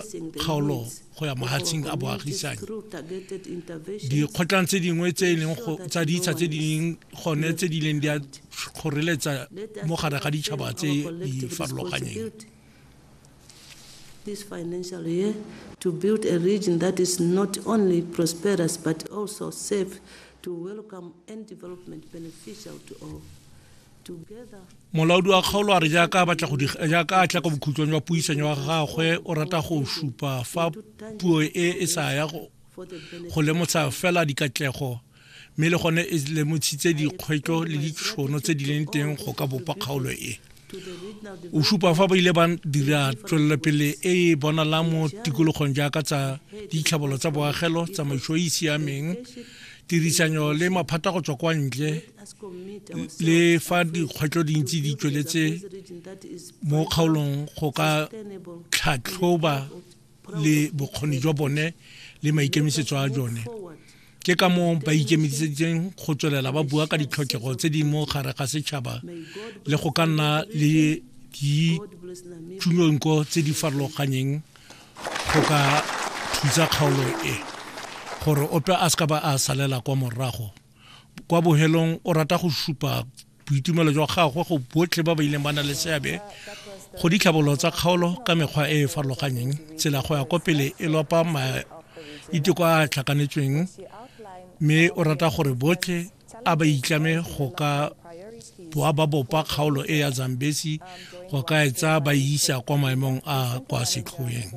kgaolo go ya mahatshing a boagisanyi dikgotlang tse dingwe tse e leng tsa ditsha tse di leng gone tse di leng di a kgoreletsa mo gare ga ditšhaba tse di farologanyeng this financial year to build a region that is not only prosperous but also safe to welcome and development beneficial to all molaodi wa kgaolo a re jaaka a batla go jaaka a tla ka bokhutlong jwa puisanyo wa gagwe o rata go supa fa puo e e sa ya go lemotsha fela dikatlego mme le gone e lemotshitse dikgwetlho le ditšhono tse di leng teng go ka bopa kgaolo e o supa fa ba ile ba dira tswelelopele e e bonalang mo tikologong jaaka tsa ditlhabolo tsa boagelo tsamaiso e e siameng tirisanyo le maphata go tswa kwa ntle le fa dikgwetlho dintsi di tsweletse mo kgaolong go ka tlhatlhoba le bokgoni jwa bone le maikemisetso a jone ke ka moo ba ikemiseditseng go tswelela ba bua ka ditlhokego tse di mo gare ga setšhaba le go ka nna le ditšhunonko tse di farologanyeng go ka thusa kgaolo e gore ope a se ka ba a salela kwa morago kwa bohelong o rata go supa boitumelo jwa gagwe go botlhe ba ba ileng ba na le seabe go ditlhabololo tsa kgaolo ka mekgwa e e farologaneng tsela go ya kwa pele e lopa maiteko a a tlhakanetsweng mme o rata gore botlhe a ba itlame go ka boa ba bopa kgaolo e ya zambesi go ka etsa ba isa kwa maemong a kwa setlhoeng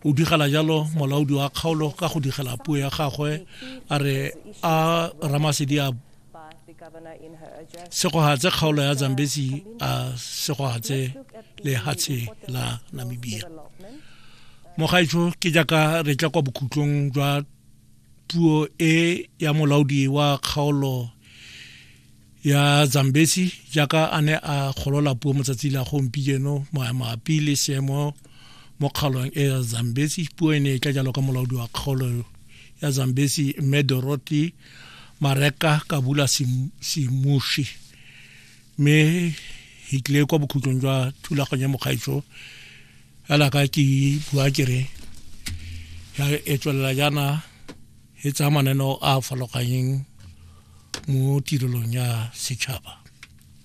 o digela jalo molaodi wa kgaolo ka go digela puo ya gagwe a re a ramasedi a segogatse kgaolo ya zambesi a segogatse lehatshe la namibia mogaetsho ke jaaka re tla kwa bokhutlong jwa puo e ya molaodi wa kgaolo ya zambesi jaaka a ne a golola puo mo tsatsi la gompieno mabapi le seemo mo kgaolong e ya zambesi puo e ne e tla jalo ka molaodi wa kgaolo ya zambesi mme dorothy mareka kabula simushi mme hitlile kwa bokhutlong jwa thulaganyo ya mokgaitsho fela ka ke bua kere ya e tswelela jaana e tsaya mananeo a a farologaneng mo tirelong ya setšhaba